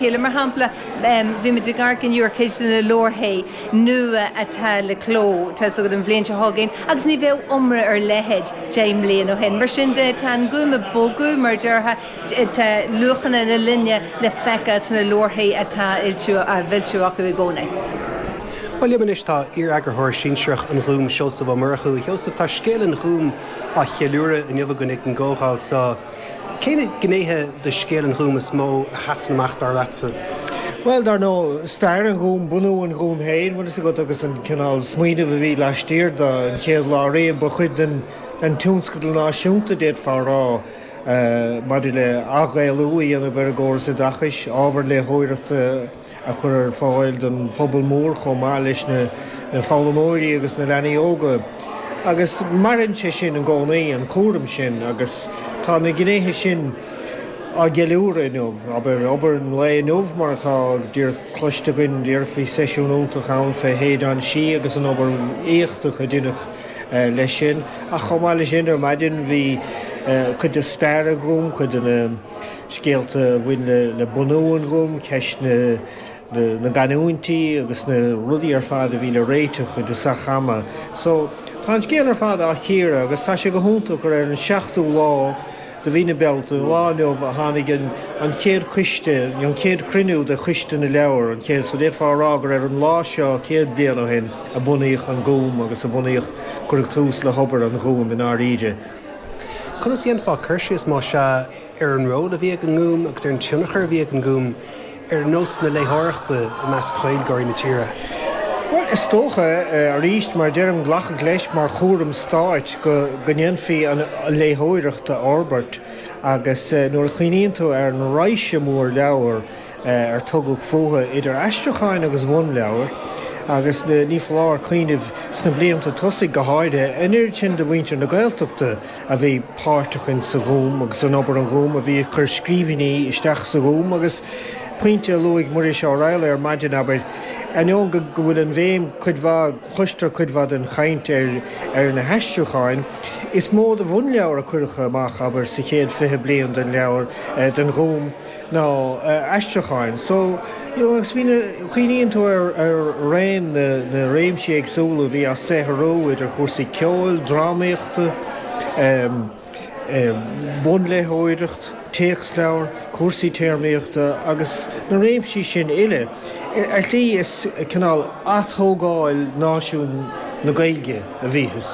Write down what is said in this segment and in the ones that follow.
Chéile. Mar shampla, bhí muid ag amharc inniu ar cheist na leabharthaí nua atá le cló, tá 's agat, an bhliain seo chugainn agus ní bheadh iomrá ar a leithéid deich mbliain ó shin. Mar sin de, tá an Gúm ag bogadh, mar a déarfá, tá luachanna na linne le feiceáil sna leabharthaí atá á bhfoilsiú acu i gcónaí. Bhuel, liom anois tá iar-eagarthóir sinsearach an Ghúim, Seosamh Ó Murchú. A Sheosaimh, tá scéal an Ghúim á cheiliúradh inniu againn ag an gcomhdháil so. Cé na gnéithe de scéal an Ghúim is mó a sheasann amach dar leatsa? Bhuel, dar ndóigh, stair an Ghúim, bunú an Ghúim féin, bhfuil fhios agat, agus an cineál smaoinimh a bhí laistiar de, an chéad lá riamh, ba chuid den tionscadal náisiúnta, d'fhéadfá a rá, maidir le ath-Ghaelú a dhéanamh ar an gcóras oideachais, ábhar léitheoireachta, a chur ar fáil don phobal mór chomh maith leis na foghlaimeoirí agus na leanaí óga. Agus maireann sé sin i gcónaí, an cúram sin, agus tá na gnéithe sin á gceiliúradh inniu. Abair, obair an lae inniu, mar atá díreach cloiste againn, díreach bhí, seisiún iontach ann fé Shéideán Sí agus an obair éachtach a deineadh leis sin. Ach chomh maith leis sin, ar maidin bhí cuid de stair an Ghúim, cuid de na. scéalta a bhain le bunú an Ghúim, ceist na gcanúintí agus na rudaí ar fad a bhí le réiteach i dtosach ama. So, tá an scéal ar fad á chíoradh agus tá sé go hiontach gur ar an seachtú lá de mhí na Bealtaine, an lá inniu, a tháinig an chéad coiste, an chéad chruinniú de Choiste na Leabhar, an chéad, so d'fhéadfá a rá gur ar an lá seo céad bliain ó shin a bunaíodh an Gúm agus a bunaíodh, cuireadh tús le hobair an Ghúim i ndáiríre. Conas a dhéanfá cur síos, más ea, ar an ról a bhí ag an nGúm agus ar an tionchar a bhí ag an nGúm ar nós na léitheoireachta i measc Ghaeilgeoirí na tíre. Bhuel, is dócha, arís, mar a deirim, glacadh leis mar chúram stáit go ndéanfaí an léitheoireacht a fhorbairt agus nuair a chuimhníonn tú ar an raidhse mhór leabhar ar tugadh fúthu, idir aistriúcháin agus bhunleabhair, agus ní foláir cuimhneamh, sna blianta tosaigh go háirithe, an oiread sin de mhuintir na Gaeltachta, a bhí páirteach in sa Ghúm agus in obair an Ghúim, a bhí ag cur scríbhinní isteach sa Ghúm agus, pointe a luaigh Muiris Ó Raghallaigh ar maidin, abair, ainneoin go go bhfuil an bhéim cuid mhaith, cloistear cuid mhaith den chaint ar ar na haistriúcháin, is mó de bhunleabhair a cuireadh amach, abair, sa chéad fiche bliain den leabhar, den Ghúm. ná aistriúcháin. So, you know, agus bhí na, cuimhníonn tú ar raon na réimsí éagsúla a bhí á saothrú, idir chúrsaí ceoil, drámaíochta, bunléitheoireacht, téacsleabhair, cúrsaí téarmaíochta agus na réimsí sin uile, ar shlí is cineál atógáil náisiún na Gaeilge. a bhíothas,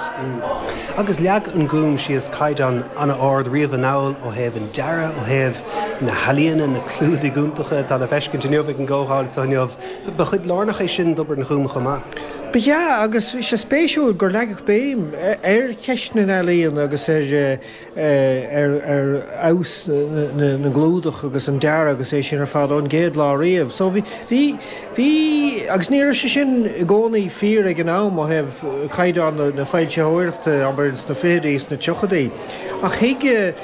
agus leag an Gúm síos caighdeán an-ard riamh anall ó thaobh an dearaidh, ó thaobh na healaíne, na clúdaigh iontacha atá le feiscint inniu ag an gcomhdháil seo inniu, ba chuid lárnach é sin d'obair an Ghúim chomh maith. Ba ea, agus bhí sé spéisiúil gur leagadh béim ar cheist na n-ealaíon agus ar. ar fheabhas na gclúdach agus an dearadh agus é sin ar fad ón gcéad lá riamh. So, bhí, bhí, bhí, agus ní raibh sé sin i gcónaí fíor ag an am ó thaobh chaighdeán na foilsitheoireachta, abair, sna fichidí, sna tríochaidí, ach thuig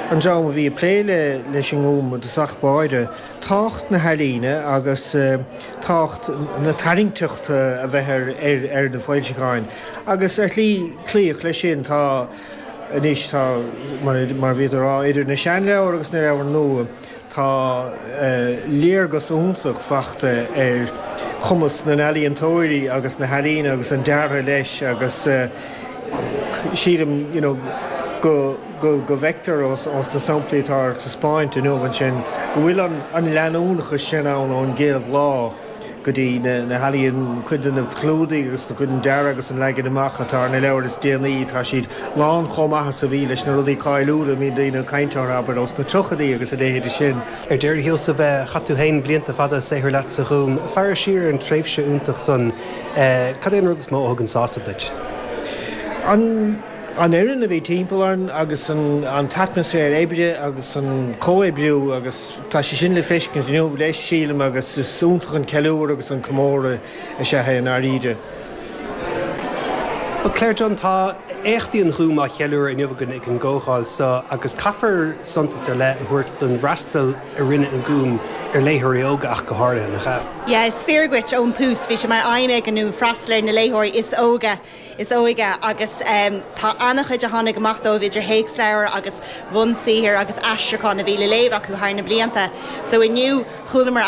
an dream a bhí ag plé le, leis an nGúm, de thosach báire, tábhacht na healaíne agus tábhacht na tarraingteachta a bheith ar, ar, ar na foilseacháin. Agus ar shlí, cloíodh leis sin. Tá. Anois tá, mar a bhí tú a rá, idir na seanleabhair agus na leabhair nua, tá léargas iontach le feiceáil ar chumas na n-ealaíontóirí agus na healaíne agus an deartha leis agus sílim go bhfeictear ó na samplaí atá ar taispeáint inniu ansin go bhfuil an leanúnachas sin ann ón gcéad lá. go dtí na healaíona, cuid de na clúdaigh agus cuid den dearadh agus an leagan amach atá ar na leabhair is déanaí, tá siad lán chomh maith is a bhí leis, na rudaí cáiliúla a mbíonn daoine ag caint orthu, abair, ós na tríochaidí agus a leithéide sin. Ar deireadh, a Sheosaimh, chaith tú féin blianta fada ag saothrú leat sa Ghúm. Ag féachaint siar ar an tréimhse iontach san, cad é an rud is mó a thugann sásamh duit? An fhoireann a bhí timpeall orainn agus an t-atmaisféar oibre agus an comhoibriú agus. Tá sé sin le feiscint inniu, leis, sílim, agus is iontach an ceiliúradh agus an comóradh is ea é i ndáiríre. Bhuel, Claire Dunne, tá éachtaí an Ghúim á gceiliúradh inniu againn ag an gcomhdháil seo agus caithfear suntas ar leith a thabhairt don bhfreastal a rinne an Gúm ar léitheoirí óga ach go háirithe, nach ea? Yeah, is fíor dhuit, ón tús bhí sé mar aidhm ag an nGúm freastal ar na léitheoirí is óige is óige agus tá an-chuid a tháinig amach dóibh idir théacsleabhair agus bhunsaothair agus aistriúcháin a bhí le léamh acu thar na blianta so inniu chualamar